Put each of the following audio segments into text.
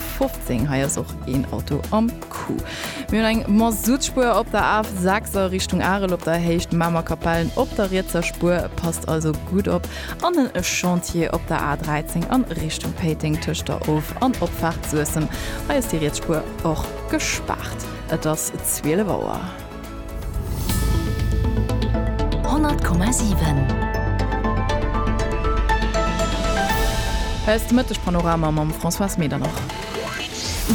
15, hei ass och een Auto am Coup. Mir hunn eng Massutspur op der Af 6 a Richtung Arel op der Héicht Mamer Kapellen op der rietser Spur, passt also gutt op, an en Chantier op der A 13 an Richtung Péiteng tëscht der Of an Opfaart Suessem, hei ass déi riets Spur och gespaart. Et ass 12 Auer. Hei ass de Mëtteg-Panorama mam Françoise Medernach.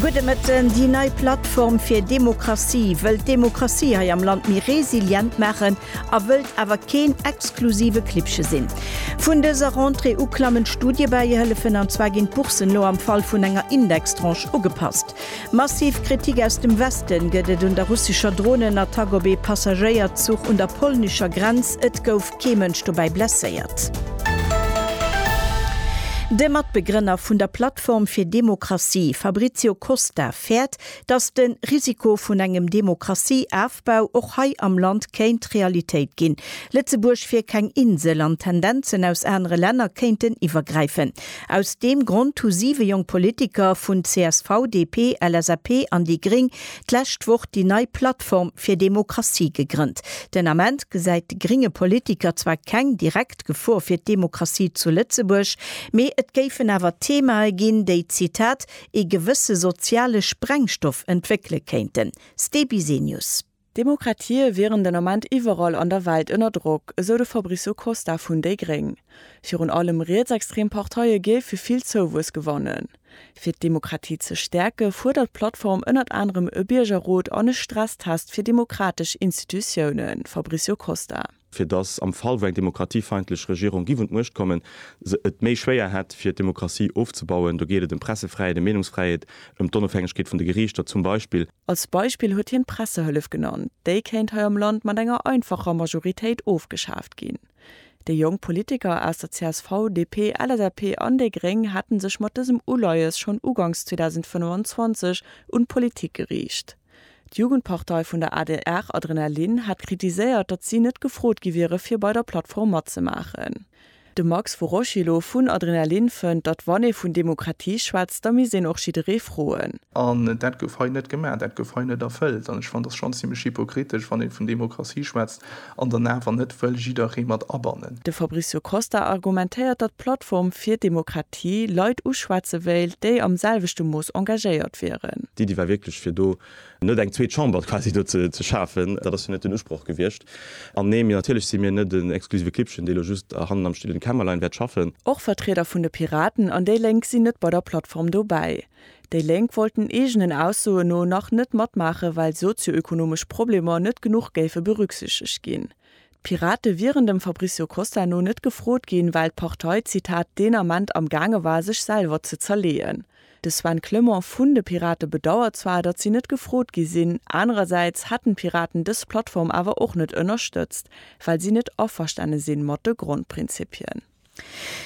Gudde Mëtten. Déi nei Plattform fir Demokratie wëllt d'Demokratie hei am Land méi resilient maachen a wëllt awer keen exklusive Klippche sinn. Vun dëser Rentrée u klammen d'Studiebäihëllefen, an zwar ginn d'Bourssen elo am Fall vun enger Indextranche ugepasst. Massiv Kritik aus dem Westen gëtt et un der russescher Dronenattack op ee Passagéierzuch un der polnescher Grenz. Et gouf kee Mënsch dobäi blesséiert. De Matbegrënner vun der Plattform fir Demokratie, Fabrizio Costa, fäert, datt de Risiko vun engem Demokratie-Afbau och hei am Land kéint Realitéit ginn. Lëtzebuerg wier keng Insel an d'Tendenzen aus anere Länner kéinten iwwergräifen. Aus deem Grond hu siwe jonk Politiker vun csv, DP, LSAP an déi gréng d'lescht Woch déi nei Plattform fir Demokratie gegrënnt. Den Ament gesäit de grénge Politiker zwar keng direkt Gefor fir d'Demokratie zu Lëtzebuerg, mee et géifen awer Themae ginn, déi, Zitat, ee gewësse soziale Sprengstoff entwéckele kéinten. Ste Bisenius. D'Demokratië wieren den Ament iwwerall an der Welt ënner Drock, esou de Fabricio Costa vun déi gréng. Virun allem rietsextrem Parteie géife vill Zouwuess gewannen. Fir d'Demokratie ze stäerke fuerdert d'Plattform ënnert anerem e Biergerrot an e Stresstest fir demokratesch Institutiounen, Fabricio Costa. fir datt am Fall wou eng demokratiefeindlech Regierung giff un d'Muecht kommen, se et méi schwéier hätt fir d'Demokratie ofzebauen. Do geet et ëm d'Pressefräiheet, ëm Meenungsfräiheet, ëm d'Onofhängegkeet vun de Geriichter zum Beispill. Als Beispill huet hien d'Pressehëllef genannt, déi kéint hei am Land mat enger einfacher Majoritéit ofgeschaaft ginn. Déi jonk Politiker aus der csv, DP, LSAP an déi Gréng hätte sech mat dësem Uleies schonn ugangs 2025 un d'Politik geriicht. D'Jugendpartei vun der adr Adrenalin hat kritiséiert, datt si net gefrot gi wiere fir bei der Plattform matzemaachen. De Max Vorocillo vun Adrenalin fënnt, datt wann ee vun Demokratie schwätzt, da misst een och jidderee froen. An dat gouf hei net gemaach, dat gouf hei net erfëllt. An ech fannen, et ass schonn zimmlech hypokritesch, wann ee vun Demokratie schwätzt, An dann awer net wëll jidderee mat abannen. De Fabricio Costa argumentéiert, datt d'Plattform fir Demokratie Leit uschwätze wéilt, déi am selwechte Mooss engagéiert wieren. D'Iddi war wierklech, fir do net eng zweet Chamber quasi do ze schafen. Dat ass jo net den Usproch gewiescht. An nee, mir natierlech si mir net en exklusive Klibbchen, dee lo just hannen am stillen Kämmerlein wäert schaffen. Och Vertrieder vun de Piraten an déi Lénk sinn net bei der Plattform dobäi. Déi Lénk wollten eegenen Aussoen no nach net matmaachen, well sozio-ökonomesch Problemer net genuch géife berücksichtegt ginn. D'Pirate wieren dem Fabrizio Costa no net gefrot ginn, well d'Partei, Zitat, deen Ament am gaange war sech selwer ze zerleeën. De Sven Clement vun de Pirate bedauert zwar, datt si net gefrot gi sinn, anerersäits hätten d'Piraten dës Plattform awer och net ënnerstëtzt, well si net averstane sinn mat de Grondprinzippien.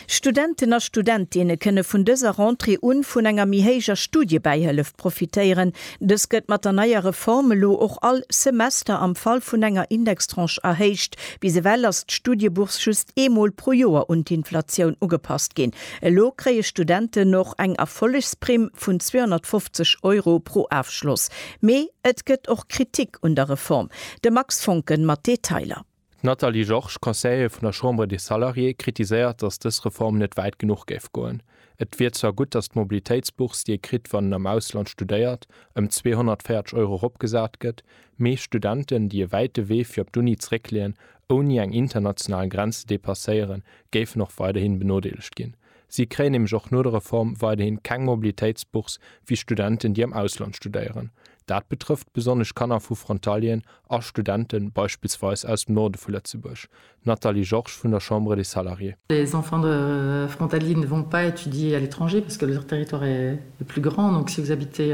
Studenten a Studentinnen kënne vun dëser Rentrée un vun enger méi héijer Studiebäihëllef profitéieren. Dës gëtt mat der neier Reform elo och all Semester am Fall vun enger Indextranche erhéicht. Bis ewell ass d'Studiebourse just eemol pro Joer un d'Inflatioun ugepasst ginn. Elo kréie Studenten och eng Erfollegsprimm vun 250 Euro pro Afschloss. Mee et gëtt och Kritik un der Reform. De Max Foncken mat Detailer. D'Nathalie Georges, Conseillere vun der Chambre des Salariés, kritiséiert, datt dës Reform net wäit genuch géif goen. Et wier zwar gutt, datt d'Mobilitéitsbourse, déi ee kritt, wann een am Ausland studéiert, ëm 240 Euro eropgesat gëtt, mee Studenten, déi e wäite Wee fir op d'Uni zeréckleeën, ouni eng international Grenz ze depasséieren, géifen och weiderhi benodeelegt ginn. Si kréien nämlech och no der Reform weiderhin keng Mobilitéitsbourse wéi Studenten, déi am Ausland studéieren. Dat betrëfft besonnesch Kanner vu Frontalieren a Studenten, beispillsweis aus dem Norde vu Lëtzebuerg. Nathalie Georges vun der Chambre des Salariés. Les enfants de frontaliers ne vont pas étudier à l'étranger parce que leur territoire est plus grand, donc si vous habitez.